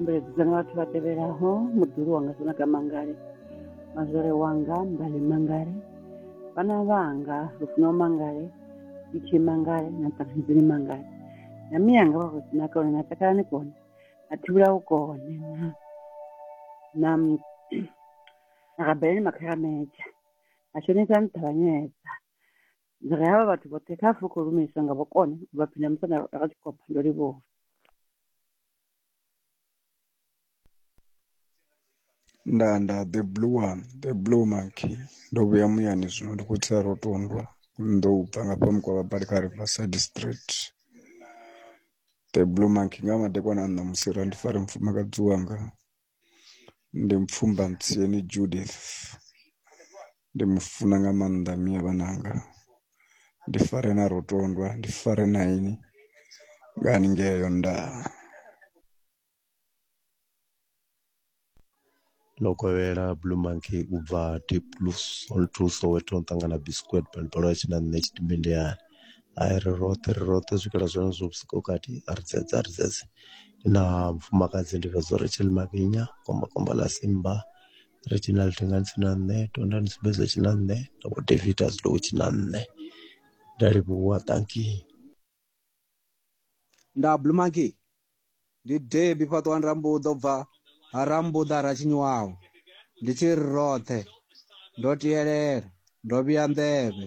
mbeledza nga vhathu vha tevhelaho muḓulu wanga sina ka mangale mazwale wanga mbale mangale vhana vhanga lufuno mangale itshi mangale na ṱafidzini mangale na miyanga vha khou sina kone na takalani kone na thivhula u kone na na rabeleni makharamedzha na shonisa nṱhavhanyedza ndi ri havha vhathu vhoṱhe kha pfhe khou lumelisa nga vhukoni u vha phina musanda ra tshi khou pfa ndo livhuwa nda nda the blue one the blue monkey ndo vhuya muyani zwino ndi khou tsa rotondwa ndo u bva nga fhamu kwa vhabali kha riverside street the blue monkey nga madekwana a ṋamusi ra ndi fare mufumakadzi wanga ndi Mupfumbantsieni Judith ndi mu funa nga maanḓa mme a vhana vhanga ndi fare na Rotondwa ndi fare na ini nga haningei Yondau. Lokovhela blue monkey u bva deep blue soweto nda ṱangana biskwet balbala tshina nṋe tshidimbe ndi hayani. hai ri roṱhe ri roṱhe u swikela zwenezwo vhusiku ho kati a ri dzedze a ri dzedze ndi na mufumakadzi ndi fhedza uri tshee Mavinya kombakomba ḽa Simba ri tshina ḽi thinga ni si na nṋe tonda ni sumbedza tshi na nṋe na vho David a zwi tou tshi na nṋe ndi a livhuwa tankie nda blue monkey ndi debi fhaṱuwani rambuḓa u bva ha rambuḓa ra tshinyiwaho ndi tshi ri roṱhe ndo tielela ndo vhuya nḓevhe